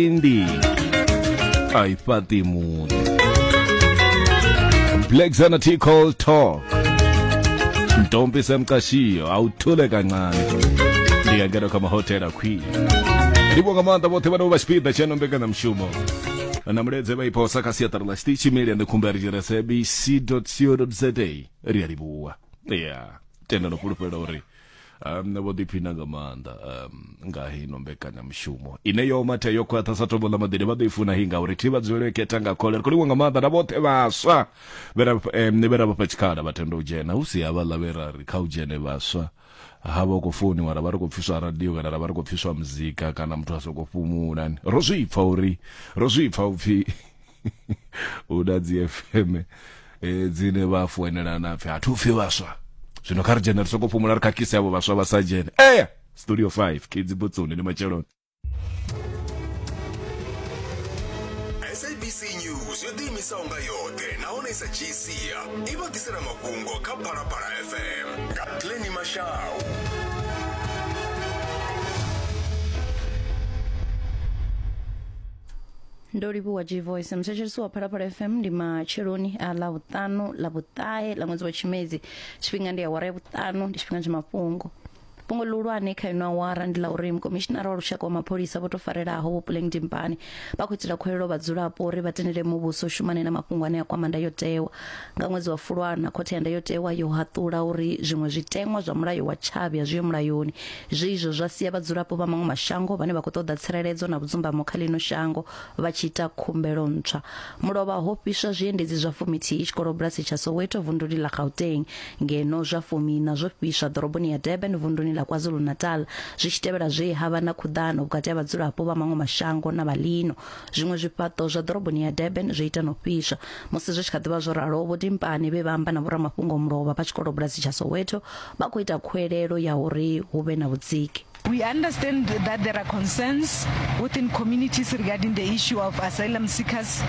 Cindy a i fhaṱi muḓi black zana t call talk ntombi semqashiyo awuthule kancane ndiyangena kha mahotela khwini ndivho nga maanḓa vhoṱhe vhane vho vha tshipiḓa tsha nombekanyamushumo na muledze vha iphosa kha siaṱari ḽa tshiṱitshi meli ane khumbari tshire sabc co za ri a livhuwa ya tenda no fhulufhela uri um, vho ḓiphina nga maanḓa um, nga hino mbekanyamushumo ine yo matha yo khwaṱha sa tombo ḽa maḓini vha ḓo i funa hi ngauri thi vha dzulele khetha nga khole ri khou livha nga maanḓa na vhoṱhe vhaswa vhe ra vhafha tshikhala vha tenda u dzhena hu si havhaḽa vhe ra ri kha u dzhene vhaswa ha vha u khou founiwa ra vha ri khou pfiswa radio kana ra vha ri khou pfiswa muzika kana muthu a sokou fhumula ro zwi pfa uri ro zwi pfa upfhi hu na dzi fm eh, dzine vha foinela na pfi hathu pfi vhaswa zwino kha ri dzhene ri soko fhumula ri khakhise avho vhaswa vha sa dzhene eya studio 5 kids botsoni ndi matsheloni sabc news yo ḓiimisaho nga yoṱhe nahone i sa dzhii sia i vha ḓisela mafhungo kha phalaphala fm nga pleni mashau ndo livhuwa g voice muthetshelesi wa phalaphala fm ndi matsheloni a ḽa vhuṱanu ḽa vhuṱahe ḽa ṅwedzi wa tshimedzi tshifhinga ndi awara ya vhuṱanu ndi tshifhinga tsha mafhungo fhungo ḽihulwane kha ino awara ndi ḽa uri mukomishinara wa lushaka wa mapholisa vho to farelaho vho puleng dimpane vha khou itela khuwelelo vhadzulapo uri vha tendele muvhuso u shumane na mafhungo ane a kwama ndayotewa Nga ṅwedzi wa Fulwana, Khothe ya Ndayotewa yo haṱula uri zwiṅwe zwiteṅwa zwa mulayo wa tshavhi a zwi ho mulayoni. Zwi izwo zwa sia vhadzulapo vha maṅwe mashango vhane vha khou ṱoḓa tsireledzo na vhudzumbamo kha ḽino shango vha tshi ita khumbelo ntswa. Mulovha ho fhiswa zwiendedzi zwa fumithihi tshikolobulasi tsha Soweto vunduni ḽa Gauteng, ngeno zwa fumiiṋa zwo fhiswa ḓoroboni ya Durban vunduni ḽa KwaZulu-Natal zwi tshi tevhela zwe ha vha na khuḓano vhukati ha vhadzulapo vha maṅwe mashango na vha ḽino. zwiṅwe zwifhaṱo zwa ḓoroboni ya durban zwo ita no fhiswa musi zwi tshi kha ḓivha zwo ralo vho timpani vhe vha amba na vhoramafhungo mulovha vha tshikolo bulasi tsha soweto vha khou ita khuelelo ya uri hu vhe na vhudziki We understand that there are concerns within communities regarding the issue of asylum seekers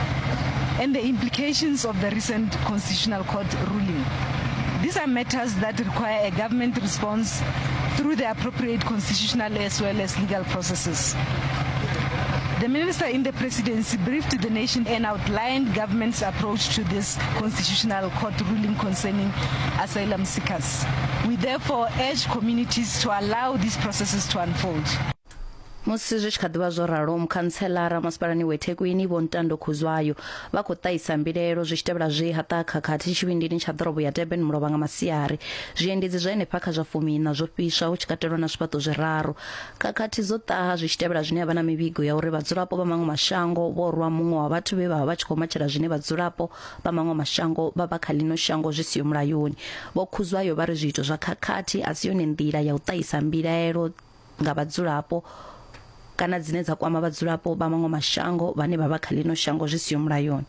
and the implications of the recent Constitutional Court ruling. These are matters that require a government response through the appropriate constitutional as well as legal processes. The minister in the presidency briefed the nation and outlined government's approach to this constitutional court ruling concerning asylum seekers. We therefore urge communities to allow these processes to unfold. musi zwi tshi kha ḓivha zwo ralo mukhantselara masipalani wa ethekwini vho ntando khuzwayo vha khou ṱahisa mbilaelo zwi tshi tevhela zwe ha ṱaha khakhathi tshivhindini tsha ḓorobo ya durban mulovha nga masiari zwiendedzi zwa henefha kha zwa fumiiṋa zwo fhiswa hu tshi katelwa na zwifhaṱo zwiraru Khakhathi dzo ṱaha zwi tshi tevhela zwine ha vha na mivhigo ya uri vhadzulapo vha maṅwe mashango vho rwa muṅwe wa vhathu vhe vha vha vha tshi khou matshela zwine vhadzulapo vha maṅwe mashango vha vha kha ḽino shango zwi siho mulayoni. Vho Khuzwayo vha ri zwiito zwa khakhathi a si yone nḓila ya u ṱahisa mbilaelo nga vhadzulapo kana dzine dza kwama vhadzulapo vha maṅwe mashango vhane vha vha kha ḽino shango zwi siho mulayoni.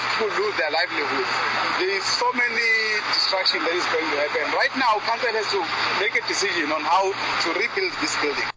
People lose their livelihood. There is so many destruction that is going to happen. Right now, council has to make a decision on how to rebuild this building.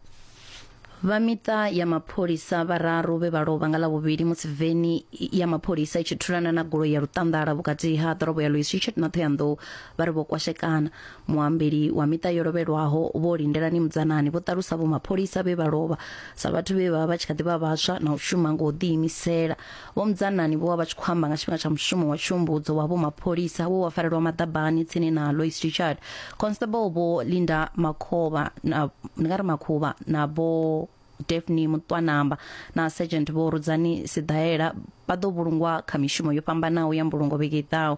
vha miṱa ya mapholisa vhararu vhe vha lovha nga ḽavhuvhili musi veni ya mapholisa i tshi thulana na goloi ya luṱanḓala vhukati ha ḓorobo ya louis richard na thoyandou vha ri vho kwashekana muambeli wa miṱa yo lovhelwaho vho lindelani mudzanani vho ṱalusa vho mapholisa vhe vha lovha sa vhathu vhe vha vha vha tshi kha ḓi vha vhaswa na u shuma nga u ḓiimisela Vho Mudzanani vho vha vha tshi khou amba nga tshifhinga tsha mushumo wa tshumbudzo wa vho mapholisa wo wa farelwa maḓabani tsini na Lois Richard. Constable vho Linda Makhovha na ndi nga ri Makhuvha na vho Daphne Mutwanamba na Sergeant vho Rudzani Sidaela vha ḓo vhulungwa kha mishumo yo fhambanaho ya mbulungo vhege i ḓaho.